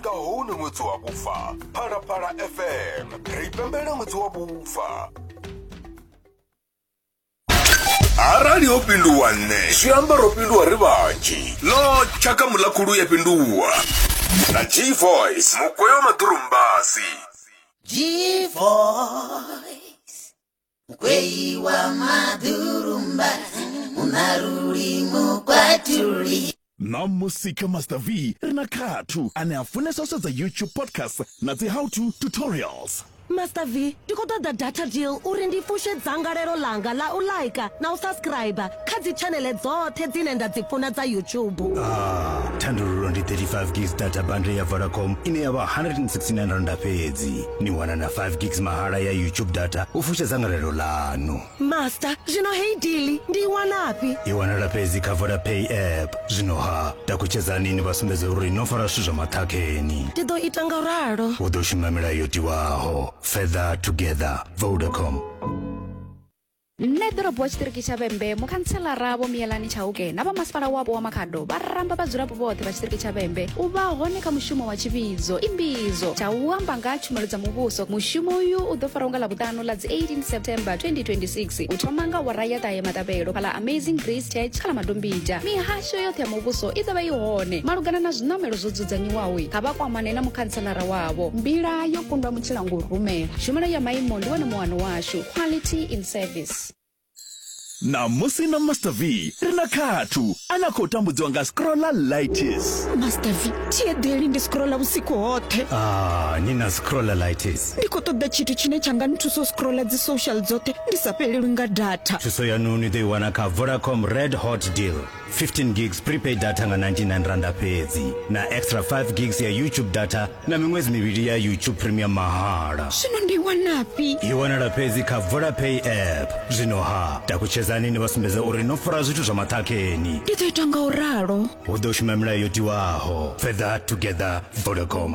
nga hone ṅwedzi wa vhufa phalaphala fm ri pembela ṅwedzi wa vhufa arali ho fhinduwa nṋe zwi amba ro fhinduwa ri vhanzhi ḽo tshaka muḽakhulu ya fhinduwa na g voice mugweyo maḓurumbasi g voice kweiwa madhurumba munaruri mukwaturi na musika master v ri na khathu ane a funesa u sedza youtube podcast na dzi how to tutorials master v ndi khou ṱoḓa data deal uri ndi fushe dzangalelo ḽanga ḽa u laika na u subscriber kha dzi tshanele dzoṱhe dzine nda dzi funa dza youtube ah, thandululo ndi 35 gigs data bundle ya vodacom ine ya vha 169 randa fhedzi ni wana na 5 gigs mahala ya youtube data u fusha dzangalelo ḽanu master zwino hei dili ndi i wanafhi i wanala fhedzi kha vodapay app zwino ha takutshedzani ni vha sumbedze uri no fara zwithu zwa maṱhakheni ndi ḓo ita nga ralo u ḓo shuma milayo yo tiwaho feather together vodacom nṋe ḓorobo wa tshiṱiriki tsha vhembe mukhantselara vho miyelani tshauke na vhamasipala wapo wa makhado vha ramba vhadzulapo vhoṱhe vha tshiṱiriki tsha vhembe u vha hone kha mushumo wa tshivhidzo imbidzo tsha u amba nga tshumelo dza muvhuso mushumo uyu u ḓo faraho nga ḽavhuṱanu ḽa dzi 18 september 2026 u thoma nga wara ya ṱahe matabelo kha ḽa amazing grace church kha ḽa madombija mihasho yoṱhe ya muvhuso i ḓo vha i hone malugana na zwiṋamelo zwo dzudzanyiwaho kha vha kwamane na mukhantselara wavho mbila yo kundwa mutshilangou rumela tshumelo ya maimo ndi wone muwano washu to quality in service ṋamusi na master v ri na khathu a na khou tambudziwa nga scrolla lightis master v thiedeli ndi scrolla vhusiku hoṱhe ah, ni na scrolla lightis ndi khou ṱoḓa tshithu tshine tsha nga nthusa u scrolla dzi social dzoṱhe ndi sa fhelelwi nga data thuso yanu ni ḓo i wana kha vodacom red hot deal 15 gigs prepaid data nga 99 randa fhedzi na extra 5 gigs ya youtube data na miṅwedzi mivhili ya youtube premium mahala zwino ndi wanafhi i wanala fhedzi kha vodapay app zwino ha takutshedzani ni vha sumbedza uri no fara zwithu zwa maṱhakheni ndi ḓo ita nga u ralo hu ḓo shuma milayo yo tiwaho further together vodacom